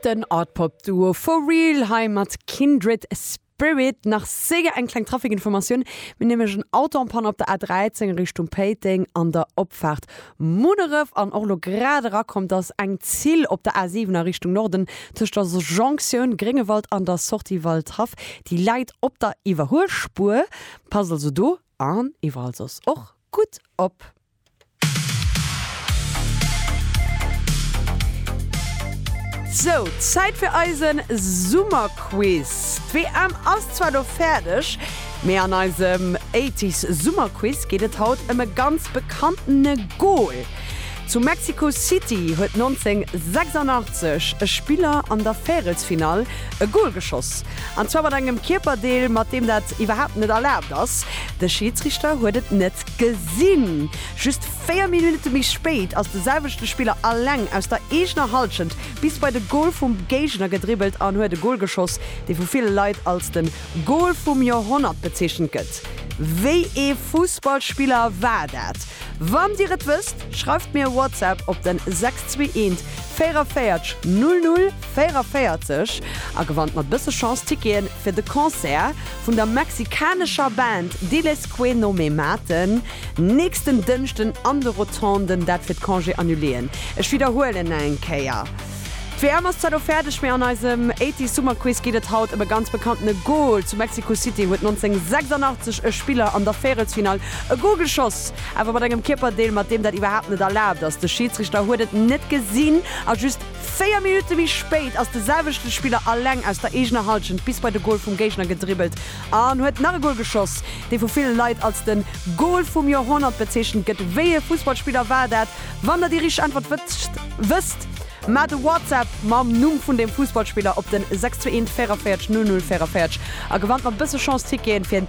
Den Art-Pop Duo For Real hei mat Kindred Spirit. Nach séier eng kleng Trafikinformatioun, mir hu nämlech en Auto en panne op der A13 a Richtung Péiteng an der Opfaart Munneref an och elo grad erakomm. Et ass eng Zil op der A7 a Richtung Norden tëscht der Jonktioun Gréngewald an der Sortie Waldhaff, déi läit op der Iwwerhuelspuer. Passt also do an iwwerall soss och gutt op. Sou, Zäit fir eisen Summerquiz. D'WM ass zwar lo fäerdeg, mee an eisem Eighties Summerquiz geet et haut ëm e ganz bekanntene Goal. Zu Mexico City huet 1986 e Spiller an der Véirelsfinall e Goal geschoss, an zwar mat engem Kierperdeel, mat deem dat iwwerhaapt net erlaabt ass. De Schiedsrichter huet et net Gesinn! Just 4 Minutte méi spéit ass de selwechte Spiller aleng aus der eegener Halschent bis bei de Gol vum Géigner gedribbelt an huet e Gol geschoss, dee vu ville Leit als den Gol vum Joerhonnert bezeechent gëtt. Wéi ee Fussballspiller war dat? Wann Dir et wësst, schreift mir e WhatsApp op den 621 44 00 44 a gewannt mat bësse Chance Ticketen fir de Concert vun der mexikanescher Band Diles Que No Me Maten nächsten Dënschden an de Rotonden. Dat fir d'Congé annuléen. Ech widderhuelen eng Kéier, d'WM ass zwar lo fäerdeg, mee an eisem Eighties Summer Quiz geet et haut ëm e ganz bekanntene Gol. Zu Mexico City huet 1986 e Spiller an der Véierelsfinall e Gol geschoss, awer mat engem Kierperdeel, mat deem dat iwwerhaapt net erlaabt ass. De Schiedsrichter huet et net gesinn a just. Véier Minutte méi spéit ass de selwechte Spiller alleng aus der eegener Hallschent bis bei de Gol vum Géigner gedribbelt an huet nach e Gol geschoss. Dee vu ville Leit als den Gol vum Joerhonnert bezeechent gëtt. Wéi ee Fussballspiller war dat? Wann der déi richteg Äntwert wësst, wësst mer de WhatsApp mam Numm vun deem Fussballspiller op den 621 44 00 44 a gewannt mat bësse Chance Ticketen fir en